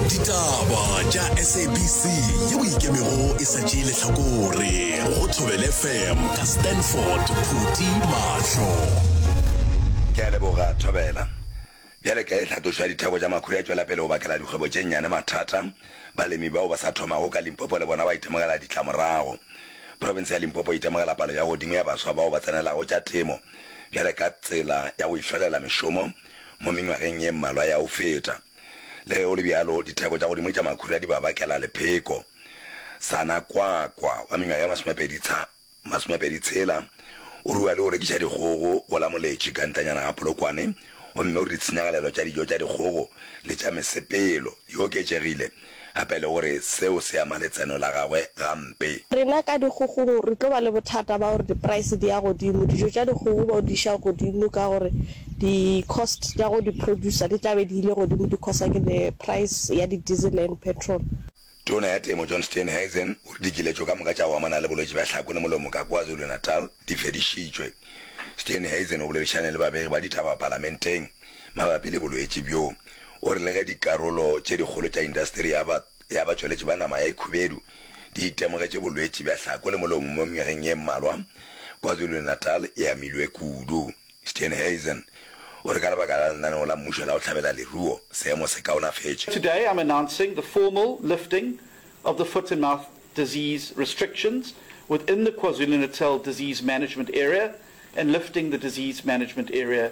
ditaba tša sabc yeo ikemego e sa tšee letlhakore go thobele fm ka stanford phuti mahlo ke a leboga thobela bjale ka e tlhatošo ya ditheko tša makhura e tšwela pele go bakela dikgwebo tše nnyane mathata balemi bao ba sa thomago ka limpopo le bona ba itemogela ditlamorago profense ya limpopo e itemogela palo ya godimo ya baswa bao ba tsenelago tša temo bjale ka tsela ya go ihlolela mešomo Mo mengwageng ye mmalwa ya go feta, le ge go le bjalo, ditheko tša godimo tša makhura di ba bakela lepheko. Sana Kwakwa wa mengwaga ye masomepedi tsha, masomepedi tshela, o rua le go rekiša dikgogo go la Moletši ka ntanyana ga Polokwane gomme o re ditshenyagalelo tša dijo tša dikgogo le tša mesepelo di oketšegile gape le gore seo se ama letseno la gagwe gampe. Rena ka dikgogong re tlo ba le bothata ba gore di-price di ya godimo, dijo tša dikgogo ba di iša godimo ka gore di-cost tša go di producer di tla be di ile godimo di causa ke the price ya di-diesel and petrol. Tona ya Temo John Steenhuisen o re dikiletšo ka moka tša go amana le bolwetši bja hlako le molomo ka KwaZulu-Natal di fedišitšwe. Steenhuisen o boledišane le babegi ba ditaba palamenteng. Mabapi le bolwetši bjo, o rile ge dikarolo tše dikgolo tša indasteri ya ba ya batšweletši ba nama ya ikhubedu di itemogetše bolwetši bja hlako le molomo mo mengwageng ye mmalwa, KwaZulu-Natal e amilwe kudu. Steenhuisen o re ka lebaka la lenaneo la mmušo la go hlabela leruo, seemo se kaonafetše. Today I'm announcing the formal lifting of the foot and mouth disease restrictions within the KwaZulu-Natal Disease Management Area and lifting the disease management area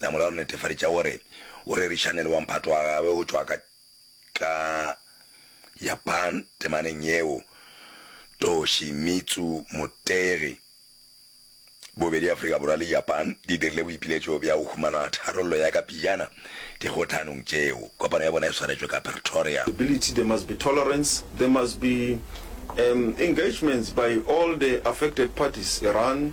Namola o netefaditša gore o rerišane le wa mphato wa gagwe go tšwa ka ka Japan temaneng yeo. Toshimitsu Motegi, Bobedi Afrika Borwa le Japan di dirile boipiletšo bja go humana tharollo ya ka pejana dikgothanong tšeo. Kopano ya bona e swaretšwe ka Pretoria. Ability, there must be tolerance, there must be engagement by all the affected parties, Iran,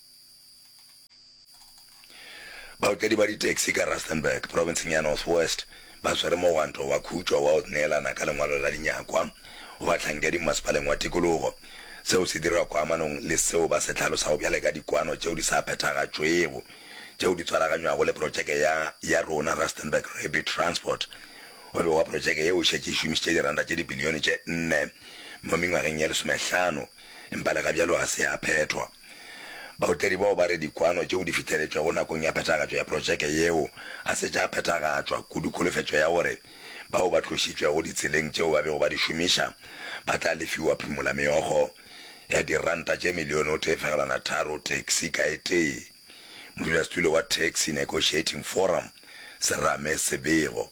Baotledi ba ditaxi ka Rustenburg, profenseng ya North West, ba swere mogwanto wa khutšo wa go neelana ka lengwalo la dinyakwa go bahlankedi mmasepaleng wa tikologo. Seo se dirwa koamanong le seo ba se hlalosago bjale ka dikwano tšeo di sa phethagatšwego tšeo di tswaraganywago le protšeke ya ya rona Rustenburg Rapid Transport. Go begwa protšeke yeo e šetše e šomišitše diranta tše dibilione tše nne mo mengwageng ye lesomehlano, empa le gabjalo ga se ya phethwa. Baotledi bao ba re dikwano tšeo di fihleletšwego nakong ya phethagatšo ya protšeke yeo ga se tša phethagatšwa, kudu kholofetšo ya gore bao ba tlošitšwego ditseleng tšeo ba bego ba di šomiša ba tla lefiwa phumolameokgo ya diranta tše milione o tee fegelwana tharo taxi ka e tee. Modulasetulo wa Taxi Negotiating Forum, Serame Sebego,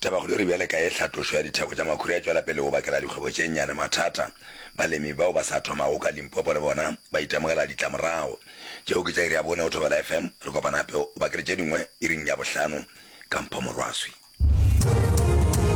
Tabakgolo e re bjale ka ye tlhatlošo ya ditheko tša makhura e tšwela pele go bakela dikgwebo tše nnyane mathata, balemi bao ba sa thomago ka Limpopo le bona ba itemogela ditlamorago. Tšeo ke tša iri ya bone go Thobela FM, re kopana gape o bakele tše dingwe iring ya bohlano ka Mpho Morwaswi.